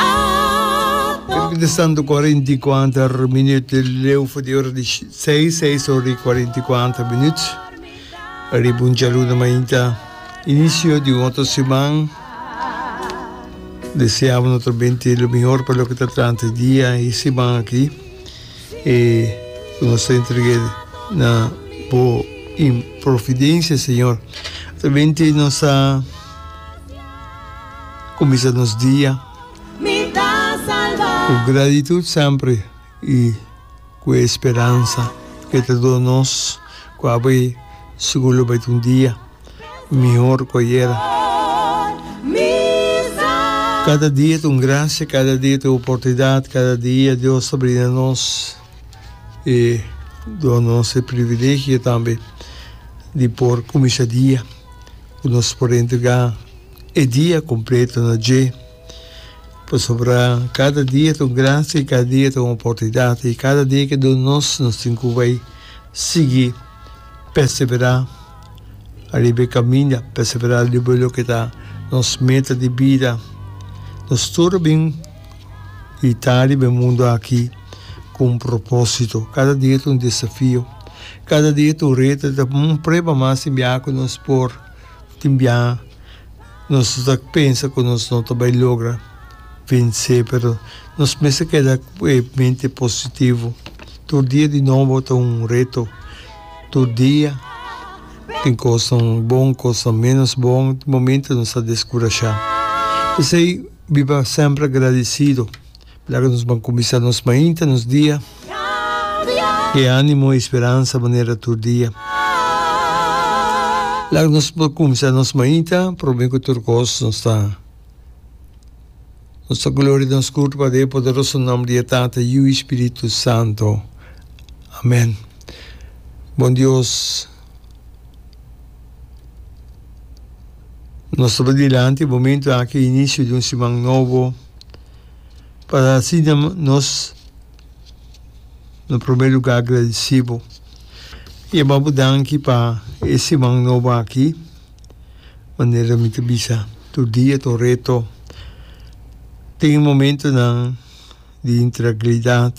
Abo. Kerk di Santo Korinti i kuater minuut di leu for di ora di seis, seis ora i kuarenta i kuater minuut. Ariba un djaluna mainta inisio di un otro siman. Deseaba noto binte lo mihor pa loke ta tranta e dia i siman aki. E ku nos ta entreg'é na bo providensia, Señor. Ta binte nos a. Kuminsa nos dia ku gratitut sempri i ku e speransa ku e ta duna nos ku abo e sigur lo bai ta un dia mihor ku ayer. Kada dia ta un grasia, kada dia ta e oportunidat, kada dia Dios ta brinda nos e duna nos e privilegio tambe di por kuminsa dia. ku nos por entregá e dia kompleto na dje, pasobra kada dia ta un grasia i kada dia ta un oportunidat, i kada dia ke duna nos, nos tin ku bai sigui perseverá ariba e kaminda, perseverá ariba loke ta nos meta di bida. Nos tur a bin i ta riba e mundu aki. cu un propósito. Cada dia ta un desafío, cada dia ta un reto, y ta un prueba mas den biaha cu nos por tin biaha. Nos no ta pensa cu nos no ta bay logra vense, pero nos mester keda cu e mente positivo. Tur dia di nobo ta un reto, tur dia tin cosnan bon, cosnan menos bon, tin momentonan nos ta descurashá. P'esey biba semper agradecido. Laga nos ban kuminsá nos mainta, nos dia, e ánimo i speransa manera tur dia. Laga nos por kuminsá nos mainta promé ku tur kos nos ta nos ta gloria nos kurpa padia e poderoso nòmber di e Tata, Yu i Spiritu Santo. Amèn. Bon Dios, nos ta bay dilanti e momentu aki, inisio di un siman nobo. para asina nos na prome luga agradesí bo i a babu danki pa e siman nobo aki. Manera mi ta bisa tur dia, tur reto tin momentunan di intranquilidat,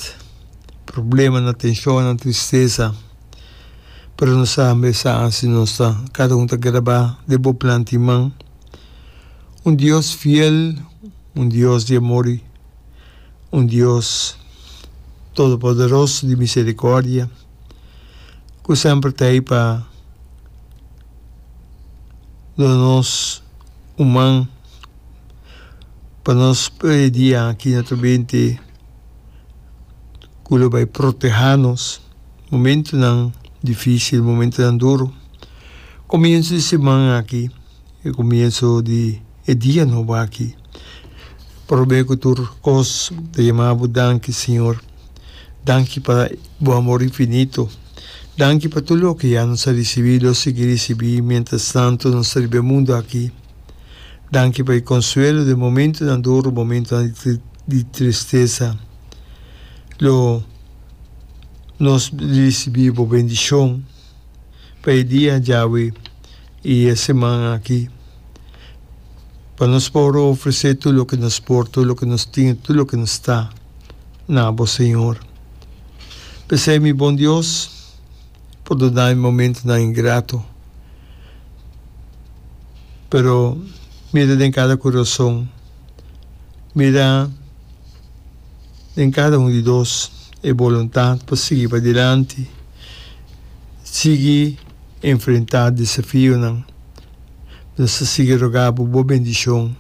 problemanan, tenshonnan, tristesa, pero nos sa mester hasi nos ta kada un ta grabá den bo plan di man. Un Dios fiel, un Dios di amor, un Dios todopoderoso di misericordia cu semper ta ahi pa duna nos un man pa nos pa e dia aki na ta benti cu lo bay proteha nos momentonan dificil, momentonan duro. Comienzo di siman aki. E comienso di e dia nobo aki. Probe cu tur cos ta yama bo danki, Señor. Danki pa bo amor infinito. Danki pa tur loke ya nos a ricibi, lo sigui ricibi mientras tanto nos ta riba e mundo aki. Danki pa e consuelo den momentonan duro, momentonan di tristeza. Lo nos ricibi bo bendicion. pa e dia djawe i e seman aki, pa nos por ofresé tur loke nos por, tur loke nos tin i tur loke nos ta na bo, Señor. P'esei, mi bon Dios, pordona mi momentonan ingrato, pero mira den kada kurason, mira. den kada un di dos e boluntat pa sigui padilanti, sigui enfrentá desafionan. Nos ta sigui rogá bo bo bendishon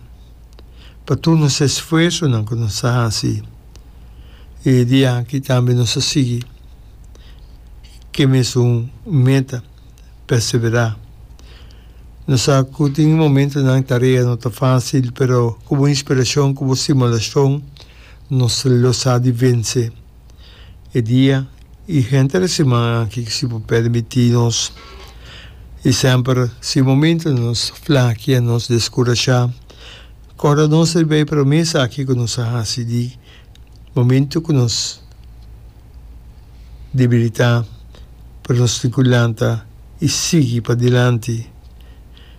pa tur nos esfuersonan ku nos a hasi. E dia aki tambe nos a sigui ke mes un meta. perseverá. No sa ku tin e momentunan tarea no ta fásil, pero ku bo inspirashon, ku bo stimulashon nos lo sa di vense e dia i henter e siman aki ku si por permití nos. I semper si momentunan nos flakia, nos deskurashá, kòrda nos riba e promesa aki ku nos a hasi di. Momento cu nos debilita, pero nos tin cu lanta y sigui pa dilanti.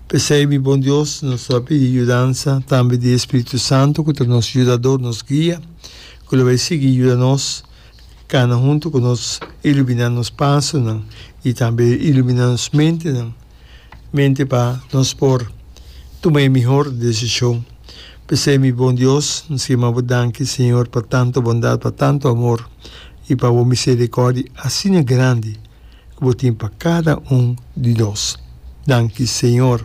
P'esey mi bon Dios, nos ta pidi yudansa tambe di e Spiritu Santo cu ta nos yudador, nos guia, cu lo bay sigui yuda nos cana hunto cu nos, ilumina nos pasonan y tambe ilumina nos mentenan. mente pa nos por tuma e mihor desishon. P'esei, mi bon Dios, N skema bo danki, Señor, pa tantu bondat, pa tantu amor i pa bo miserikòrdia asina grandi ku bo tin pa kada un di nos. Danki, Señor.